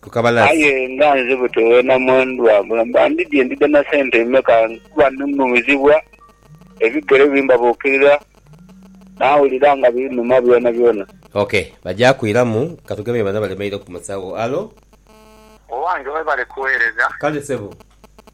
ku kabalaza. Aye nga nze bwe togheena mwe ndhwagula, mba ndidhie ndidha na sente imeka? Kuba ndinhumizibwa, ebigere bimbabuukirira, naawulira nga binuma byonabyona. Ok, bagya kwiramu. Ka tugambire bano abalemeire ku musawo. Halo? Owange webale kuwereza. Kale sebo.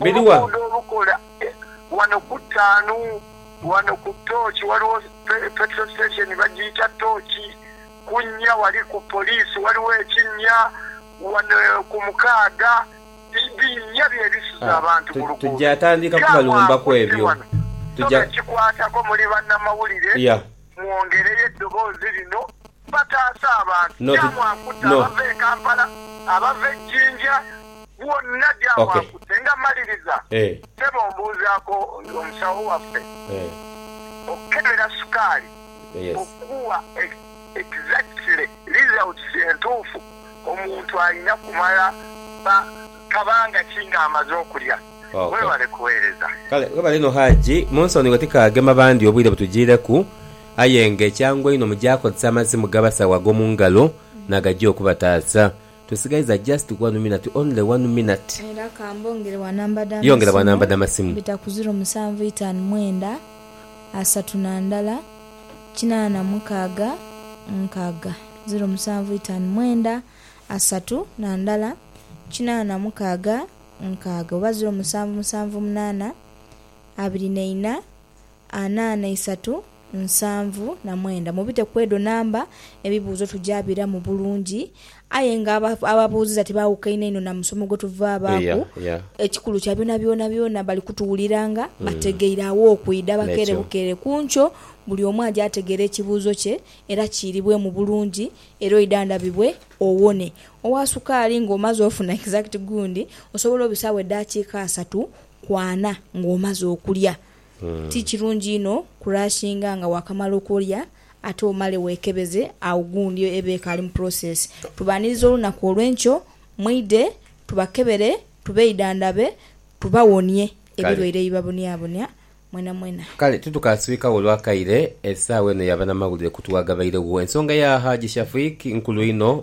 Biri wa? Obukundo obukola wano ku taanu. Wano ku Tooki waliwo petrol station bagyita Tooki. Ku nnya wali ku police waliwo ekinnya. Wano ku mukaaga binnya bye bisuza abantu ku luguudo. Ga mwangu ojje wano to bekikwatako muli banamawulire mwongereyo eddoboozi lino. Bataase abantu. Dyamwakute abava e Kampala, abava e Jinja, bwonna dyamwakute. Nga mmaliriza, ssebo mbuuzaako omusawo waffe okukebera sukaali okuwa exactly results entuufu omuntu alina kumala kabanga ki nga amaze okulya. Weebale kuweereza. Kale webale inho Hajji. Munsonighe tikaagema bandi obwire butujiireku. Aye nga ekyangu einho muja kozesa amazimu gabasawo agomu ngalo nagaja okubataasa. Tusigaiza just one minute only one minute. Era kambongere wa number dha Yongera bwa masimu, namba dha masimu. bita ku ziro musanvu itan mwenda asatu na ndala kinana na mukaga nkaga ziro musanvu itan mwenda asatu na ndala kinana na mukaga nkaga oba ziro musanvu musanvu munana abiri na ina. ana na isatu nsanvu na mwenda. Mubite ku edho namba ebibuuzo tuja biramu bulungi. Aye nga ababuuziza tibaawukaine inho na musomo gwe tuvaavaaku. Ekikulu kya byonabyonabyoona bali kutuwulira nga bategeire agho okwidha bakeere bukeere ku nkyo buli omu aje ategeere ekibuuzo kye era kiiribwemu bulungi era oidhandhabibwe owone. Owa sukaali ng'omaze ofuna exact gundi, osobola obisaagho edaakiika asatu ku ana ng'omaze okulya. Ti kirungi inho kurashinga nga wakamala okulya ate omale wekebeze agho gundi eba ekaali mu process. Tubaniriza olunaku olwenkyo mwidhe tubakebere tubeidhandhabe tubawonie Kale. ebilwaire ebibaboniabonia mwenamwena. Kale titukaaswikagho lwa kaire, esaawa eno ya banamawulire kutuwa agabairegho. Ensonga ya Haji Shafiq nkulu inho